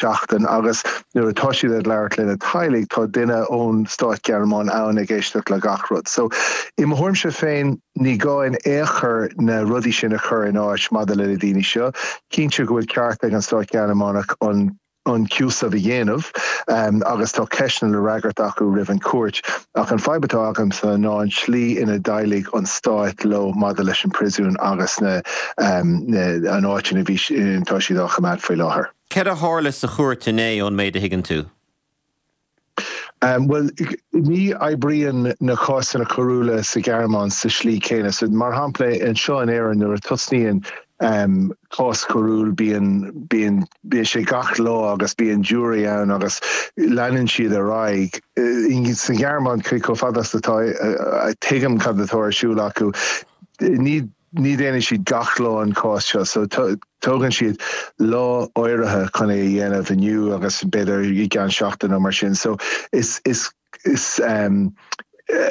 seachtain agus nuair atá siad ag labhairt lena teaghlaigh tá duine ón Stáit Gearmánach ann ag éisteacht le gach rud. So, i mo thuairimse féin, ní gá in aon chor na rudaí sin a chur in áit maidir le na daoine seo. Cinnte go bhfuil ceart ag an Stáit Ghearmánach an an cúiseamh a dhéanamh agus tá ceisteanna le fhreagairt acu roimh an chúirt ach an fadhb atá agamsa ná an tslí ina ndéileálann an Stáit leo maidir leis an príosún agus na na an áit ina bhí si atá siad á choimeád faoi láthair. Céard a tharla sa chúirt inné, ón méid a thuigeann tú? Bhuel, ní oibríonn na cásanna coiriúla sa Ghearmáin sa slí céanna. So, mar shampla, anseo in Éirinn, nuair a tosnaíonn cás coiriúil, bíonn, bíonn, bíonn sé gach lá agus bíonn jury ann agus leanann siad ar aghaidh. Sa Ghearmáin, chomh fada is atá, tuigim cad atá ar siúl acu, ní, Ní dhéanfaidh siad gach lá an cás seo so tógann siad lá áirithe chun é a dhéanamh inniu agus b'fhéidir i gceann seachtain nó mar sin so is is is ehm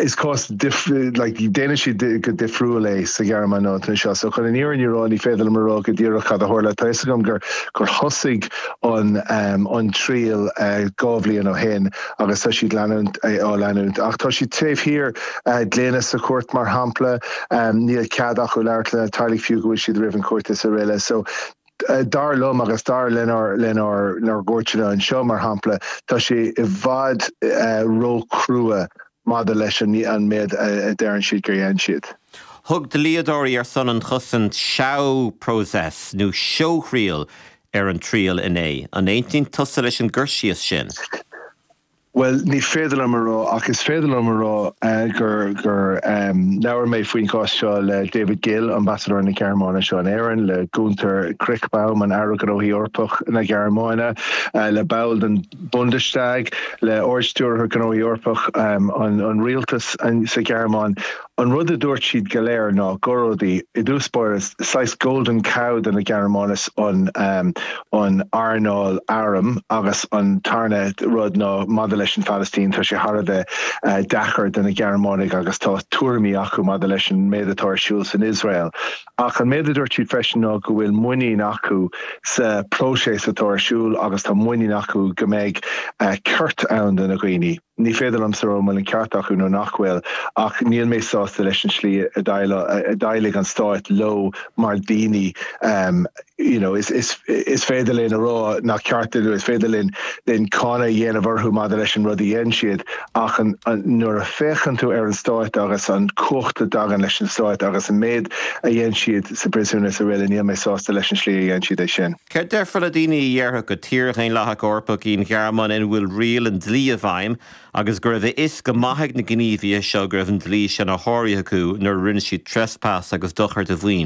is cás difriúil like déanann siad go difriúil é sa Ghearmáin ná anseo so chun an fhírinne a rá ní féidir liom a rá go díreach cad a tharla tá fhios agam gur gur thosaigh an ehm an triail eh dhá mhí ó shin agus tá siad leanúint eh á leanúint ach tá siad taobh thiar eh gloine sa chúirt mar shampla Níl cead acu labhairt lena teaghlaigh fiú go bhfuil siad roimh an chúirt is araile. So dar liom agus dar lenár gcúirteanna anseo, mar shampla, tá sé i bhfad ró-chrua maidir leis an méid a deireann siad gur dhein siad. Thug dlíodóirí ar son an chosaint Schauprozess nó seóthriail ar an triail inné. An aontaíonn tusa leis an gcur síos sin? Bhuel, ní féidir liom a rá ach is féidir liom a rá gur labhair mé faoin gcás seo le David Gill, Ambasadóir na Gearmáine anseo in Éirinn, le Gunther Krichbaum, an Aire Gnóthaí Eorpach na Gearmáine, le ball den Bundestag, le Ard-Stiúrthóir Gnóthaí Eorpach an rialtas sa Ghearmáin. An rud a dúirt siad go léir ná gurb é, i dtús báire, saghas golden cow do na Gearmánaigh is ea an earnáil airm agus an tarna rud ná maidir leis an Phalaistín, tá sé thar a bheith deacair do na Gearmánaigh agus tá tuairimí acu maidir leis an méid atá ar siúl san Iosrael. Ach an méid a dúirt siad freisin ná go bhfuil muinín acu sa próiseas atá ar siúl agus tá muinín acu go mbeidh ceart ann do na dhaoine. Ní féidir liomsa a rá an bhfuil an ceart acu nó nach bhfuil, ach níl mé sásta leis an slí a dhéileáil an stáit leo mar daoine. You know, is féidir linn a rá nach ceart dúinn, is féidir linn cáineadh a dhéanamh orthu maidir leis an rud a dhein siad, ach nuair a féachann tú ar an stáit agus an cumhacht a dtagann leis an stáit agus an méid a dhein siad sa bpríosún is araile, níl mé sásta leis an slí a dhein siad é sin. Céard déarfa le daoine a déarfadh gur tír dhaonlathach Eorpach í an Ghearmáin ina bhfuil riail an dlí i bhfeidhm agus go raibh a fhios go maith ag na gníomhaithe seo go raibh an dlí sin á shárú acu nuair a rinne siad trespass agus dochar do mhaoin?